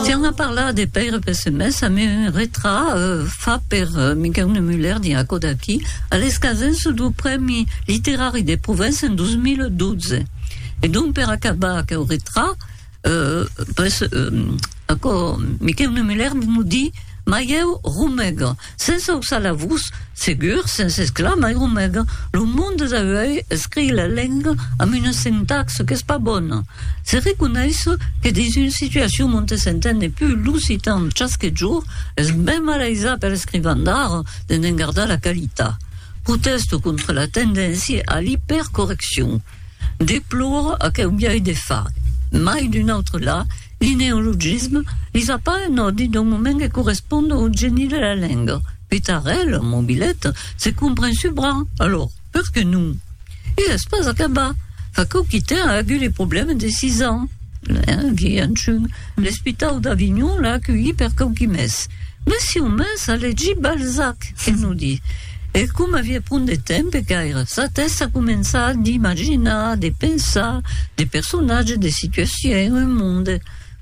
Tiens a parlar de Pèire Pessemés, a me retrà fa per Miquèu Nemuller dins aquò d'aqui, a l'escasença dau Prèmi Literari de Provença en 2012. E donc per acabar aqueu retrà, aquò Miquèu Nemuller nos di, Maieu Romèga, Sense auçar la vos, segur, sense esclar mai o mèga, lo monde d'auèi escrii la lenga amb una sintaxe qu'es pas bona. Se reconeisse que dins una situacion onte s'entende pus l'occitan chasque jorn, es ben malaisat per escrivan d'ara de ne'n gardar la qualitat. Protèste contra la tendéncia a l'ipèrcorreccion. Deplore aqueu biais de far, mai d'un autre la, Li neologisme li fa pas un òdi d'un moment que correspond au geni de la lenga. Pitarèl, mobilet, se compren subra, alors, per que non? E es pas acabat, fa quauquitè a agut li problèmes de sis ans, hein, viei anchun, l'espitau d'Avignon l'a aculhi per quauqui mes. Mès si un mes a legit Balzac, que no di? E coma aviá pron de temps pe caire sa tèsta a començar d'imaginar, de pensar, de personatges, de situacions, un monde.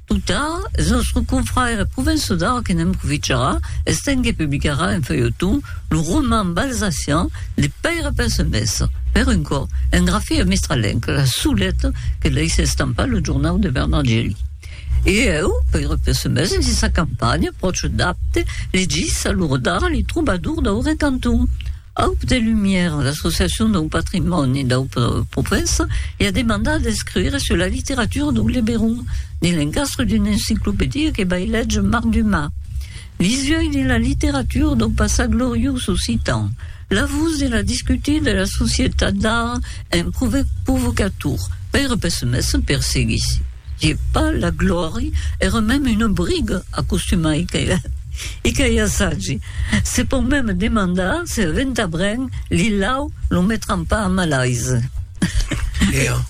Tot tard, eth nòstre confrère Provençau d'Arc que ne'm proficarà, estent que publicarà en feuilleton lo roman balzacian de Pèire Pensemèstre, per un còp, en grafia mistralenca, La Soulette, que laisse estampar lo jornau de Bernard Geli. E eu, per a pes mes en sissa campanha, pròche d'Apte, li dis a lo rodar li trobador dau recanton, Apte Lumière, l'associacion dau patrimòni dau Provença li a demandat d'escriure sur la literatura dau Liberon dins l'encastre d'una enciclopèdia que vai léger Marc Dumas. L'isòi de la literatura dau passat gloriós occitan, la vos de la discutir de la societat d'ara en provocator, pèra pessimèssa per seguir si je pas la glòri èra mèm una briga a costumar e qu'a i assagi. Se pòu mèm demandar se a Ventabren li lau lo metran pas a malaise.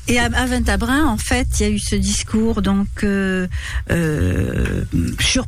Et à Ventabren, en fait, il y a eu ce discours donc euh, euh, sur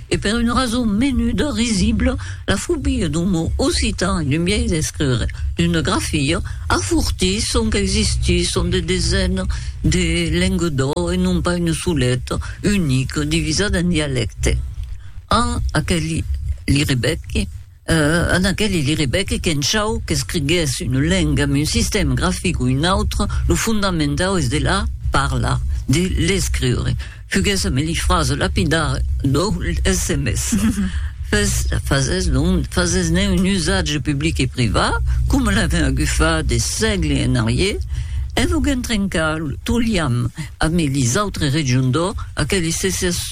e per una rason menuda, risibla, la fobia d'un mot occitan e d'un biais d'escriure, d'una grafia, afortís sonque existisson de desenas de lengues d'ò e non pas una soleta, unica, divisada en dialèctes. En aquel li rebequi, En aqueli li rebec qu'en chau qu'escrigues una lenga, un sistèm grafic o un autre, lo fondamentau es de la parlar, de l'escriure. Fuguesse me li frase lapidar lo sms. Fes, fases non, fases-ne un usatge public e privat, coma l'avèm agufat de sègle en arrier, en voguen trencar lo liam ame lis autres regions d'Or, aqueli se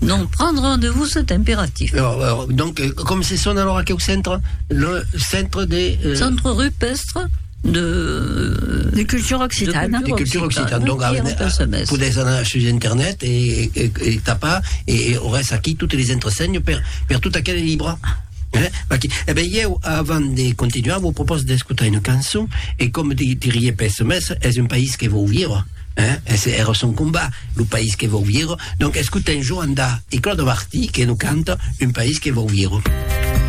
Non prendre rendez-vous c'est impératif. Donc, com se sona alors aqueu centre? Le centre de... Centre rupestre de... De cultura occitana. De cultura occitana. Donc, podètz anar sus internet e tapar e auretz aquí totes les entresenhs per tot aquel libre. E ben, ieu, avant de continuar, vos propòs d'escotar una cançon e com dirie Pessemes, es un país que vòu viure. Hein? Es era son combat, lo país que vòu vier. Donc escotem Joan Da e Claude Abartí que nos canta Un país que vòu vier.